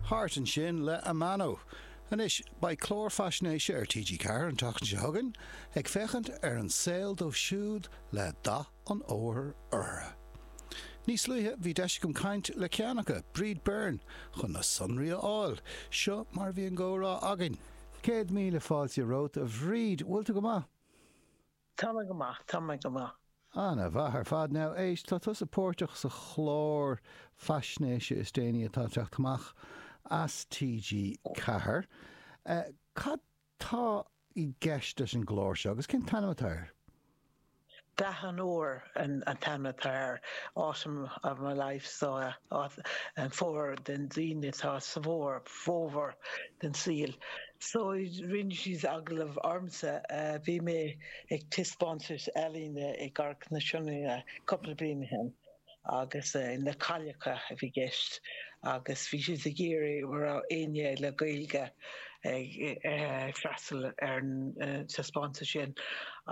Thart ansin le Amano. Anois, beidh clár faisnéise ar TG4 an tseachtain seo chugainn ag féachaint ar an saol dóibh siúd le dath an fhómhair orthu. Níos luaithe bhí deis agam caint le ceann acu, Bríd Byrne, chun na sonraí a fháil. Seo mar a bhí an gcomhrá againn. Céad míle fáilte romhat, a Bhríd. Bhfuil tú go maith? Tá mé go maith, tá mé go maith. Ana-mhaith ar fad. Now, éist, tá tusa páirteach sa chlár faisnéise is déanaí atá ag teacht amach as TG Ceathair. Cad tá i gceist leis an gclár seo agus cén t-ainm atá air? Dath an Fhómhair an t-ainm atá air, Autumn of My Life, so, fómhar den daoine atá sa bhfómhar. fómhar den saol. So rinne siad agallamh ormsa, bhí mé ag taispeántas ealaíne i gCarraig na Sionainne cúpla bliain ó shin agus na cailleacha a bhí i gceist agus bhí siad ag iarraidh an raibh éinne le Gaeilge ag freastal ar an taispeántas sin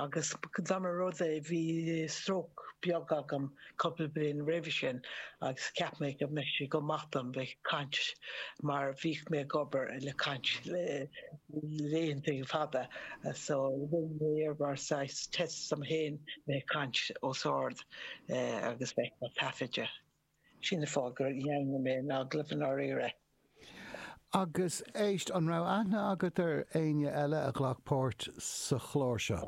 agus dá mba rud é, bhí stróc beag agam, cupla bliain roimhe sin agus cheap mé go mbeadh sé go maith dom bheith ag caint mar bhíodh mé ag obair le caint le laethanta fada so rinne mé é mar saghas test dom féin bheith ag caint os ard agus bheith ag taifeadadh. Sin an fáth gur dhearna mé an agallamh i ndáiríre. Agus éist, an raibh aithne agat ar éinne eile a ghlac páirt sa chlár seo?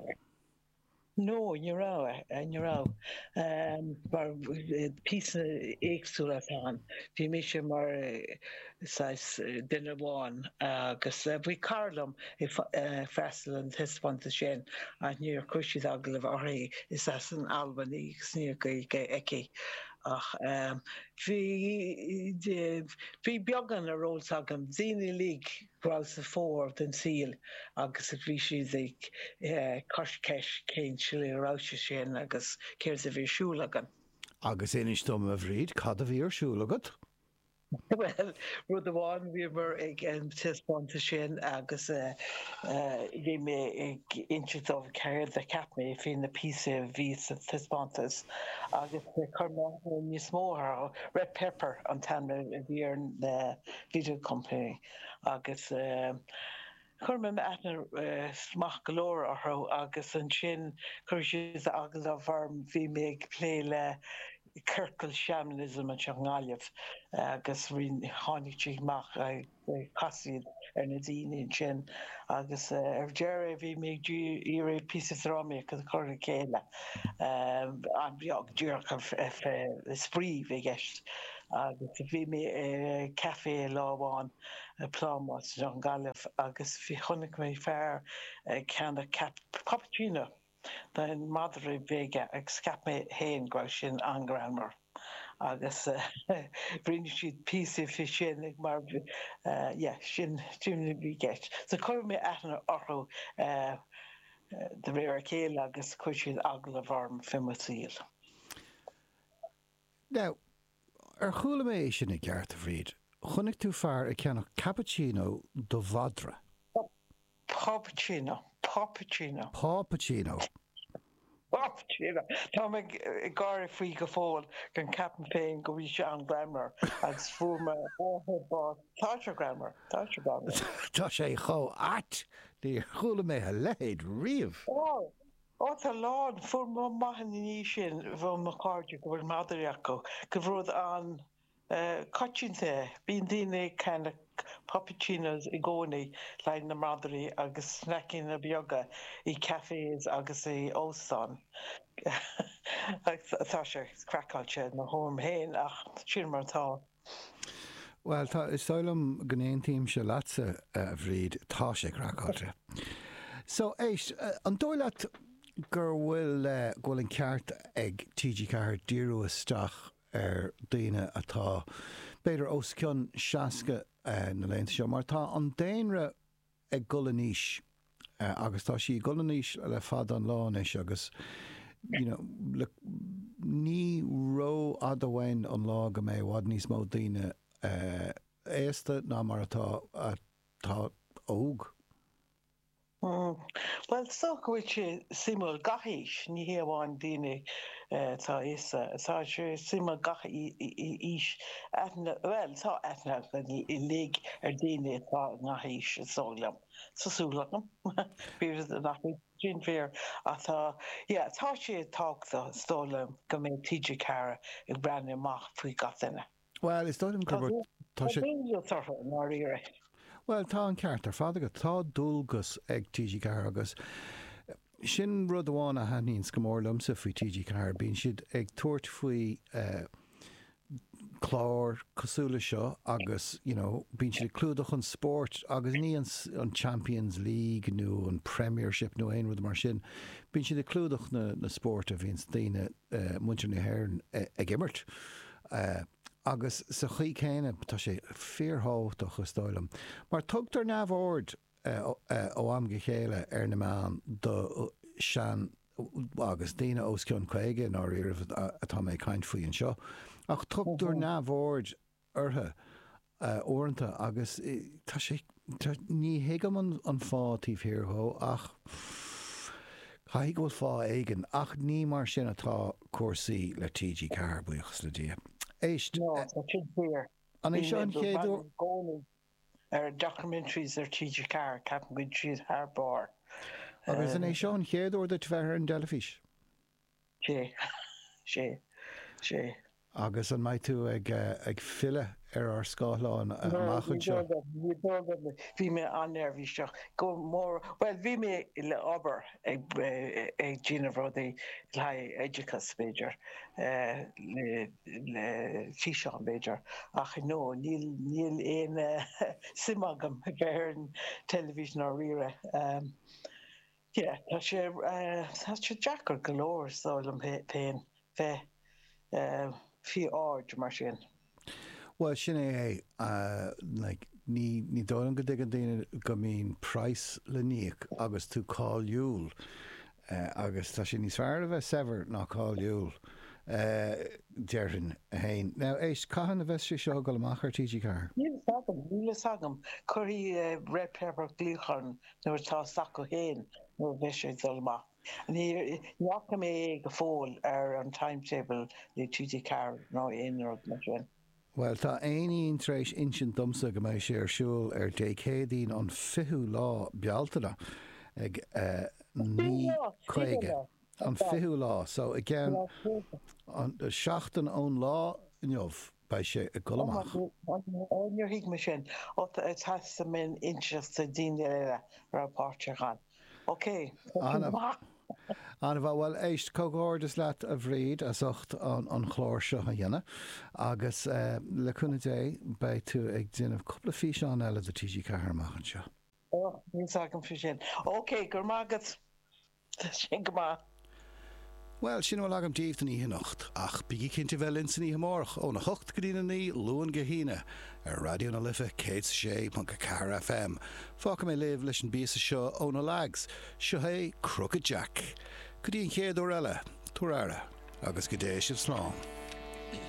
No, ní raibh, ní raibh. Mar píosaí éagsúla atá ann. Bhí mise mar saghas duine amháin agus bhí cara liom ag freastal an taispeántas sin ach níor chuir siad agallamh uirthi, is as an Albain í agus níl Gaeilge aici. Ach bhí beagán ar eolas agam, daoine uilig. raibh sa fómhar den saol agus a bhí siad ag cur ceist cén tslí a raibh sé sin agus céard a bhí ar siúl againn. Agus inis dom, a Bhríd, cad a bhí ar siúl agat? Bhuel, rud amháin, bhíomar ag an taispeántas sin agus bhí mé ag inse dóibh céard a cheap mé faoi na píosaí a bhí sa taispeántas agus chuir mé níos mó orthu. Red Pepper an t-ainm a bhí ar na video company agus chuir mé aithne maith go leor orthu agus ansin chuir siad agallamh orm, bhí mé ag plé le ciorcal shamanism anseo i nGaillimh agus tháinig siad amach, chas siad ar na daoine ansin agus ar deireadh bhí mé ag iarraidh píosa drámaíochta a chur le chéile, an-bheag, díreach spraoi a bhí i gceist. Agus bhí mé i café lá amháin, Plámás, i nGaillimh agus bhí, chonaic mé fear ag ceannach puppuccino don mhadra beag agus cheap mé féin go raibh sin an-greannmhar agus rinne siad píosa faoi sin mar, yeah, sin, sin a bhí i gceist. So chuir mé aithne orthu de réir a chéile agus chuir siad agallamh orm faoi mo shaol. Now, ar chuala mé é sin i gceart, a Bhríd? Chonaic tú fear ag ceannach cappuccino do mhadra? Puppuccino. Puppuccino. Puppuccino. Puppuccino. Tá mé ag gáire faoi go fóill, mar ceapaim féin go raibh sé an-greannmhar, agus fuair m'athair bás. Tá sé greannmhar. Tá sé greannmhar. Tá sé chomh ait! Níor chuala mé a leithéid riamh! Ó, tá a lán, fuair mé amach ina dhiaidh sin ó mo chairde go bhfuil madraí acu, gurbh rud an-choitianta é. Bíonn daoine ag ceannach puppuccinos i gcónaí le haghaidh na madraí agus sneaiceanna beaga i cafés agus i óstáin. Tá sé craiceáilte i mo thuairim féin ach sin mar atá. Bhuel, tá, is dóigh liom go n-aontaímse leatsa, a Bhríd, tá sé craiceáilte. So, éist, an dóigh leat gur bhfuil, eh, go bhfuil an ceart ag TG Ceathair díriú isteach ar daoine atá, b'fhéidir, os cionn seasca, eh, na laethanta seo, mar tá an daonra, ag gol in aois agus tá sé ag gol in aois le fada an lá anois agus you know look ní ró-fhada amháin an lá go mbeidh i bhfad níos mó daoine aosta ná mar atá atá óg. Bhuel, is dócha go bhfuil sé suimiúil gach aois, ní hé amháin daoine. Atá aosta, tá sé, suim ag gach aois aithne, bhuel, tá aithne againn uilig ar dhaoine atá i ngach aois, is dóigh liom, tá súil agam, fíor nach é sin fíor? Ach tá, yeah, tá sé tábhachtach, is dóigh liom, go mbeadh TG4 ag breathnú amach faoi gach duine. Bhuel, is dóigh liom gurb é. Tá sé. Tá dualgas orthu, i ndáiríre. Bhuel, tá an ceart ar fad agat. Tá dualgas ar TG4 agus sin rud amháin a thaitníonns go mór liomsa faoi TG4, bíonn siad ag tabhairt faoi eh cláir cosúil leis seo agus you know bíonn siad ag clúdach an spóirt agus ní an an Champions League nó an Premiership nó aon rud mar sin, bíonn siad ag clúdach na na spóirt a bhíonns daoine eh muintir na hÉireann eh ag imirt. é. Agus sa chaoi céanna, tá sé fíorthábhachtach, is dóigh liom, mar tugtar neamhaird ó am go chéile ar na meáin do sean, agus daoine os cionn 50 i ndáiríribh atá mé ag caint faoi anseo, ach tugtar neamhaird orthu uaireanta agus tá sé, ní thuigim an fáth taobh thiar de ach caithfidh go bhfuil fáth éigin. Ach ní mar sin atá cúrsaí le TG4, buíochas le Dia. Éist. No, tá sin fíor. An é seo an chéad uair? Bhí mé ag breathnú i gcónaí ar documentaries ar TG4, ceapaim go bhfuil siad thar barr. Agus an é seo an chéad uair duit bheith ar an dteilifís? Sea, sea, sea. Agus an mbeidh tú ag filleadh ar ár scáthláin amach anseo? Ní dóigh liom, ní dóigh liom. Bhí mé an-neirbhíseach, go mór, bhuel, bhí mé le obair ag déanamh rudaí le haghaidh oideachas, b'fhéidir, le físeán, b'fhéidir, ach no, níl aon suim agam a bheith ar an teilifís ná riaradh. Tá sé deacair go leor, is dóigh liom féin, bheith faoi aird mar sin. Bhuel, sin é é. Ní dóigh liom go dtuigeann daoine go mbíonn praghas le n-íoc agus tú cáiliúil. Agus tá sé níos fearr a bheith saibhir ná cáiliúil, déarfainn féin. Now, éist, cathain a bheas sé seo ag dul amach ar TG4? Níl fhios agam. Cuirfidh Red Pepper glaoch orm nuair atá a fhios acu féin nuair a bheidh sé ag dul amach. Ní fhaca mé é go fóill ar an timetable le TG4 nó aon rud mar sin. Bhuel, tá éinín tar éis insint domsa go mbeidh sé ar siúl ar Dé Céadaoin an 20ú lá Bealtaine ag 9:30. Bíonn lá, bíonn lá. An fichiú lá, so i gceann seachtain ón lá inniu, beidh sé ag dul amach. Ó, níor thuig mé sin. Ó, caithfidh mé a inseacht do dhaoine eile a raibh páirteach ann. Ok, An-mhaith. An-mhaith. Bhuel, éist, comhghairdeas leat, a Bhríd, as ucht an chlár seo a dhéanamh agus, le cúnamh Dé, beidh tú ag déanamh cúpla físeán eile do TG4 amach anseo. Ó, níl fhios agam fé sin. Ok, go raibh maith agat. Slán go fóill. Bhuel, sin a bhfuil agam daoibh don oíche anocht, ach bígí cinnte bheith linn san oíche amárach, óna hocht go dtí na naoi, Luan go hAoine, ar Raidió na Life, céad is a sé ponc a ceathair FM. Fágfaidh mé sibh leis an bpíosa seo ó na Lags. Seo é Crooked Jack. Go dtí an chéad uair eile, tabhair aire, agus go dté sibh slán.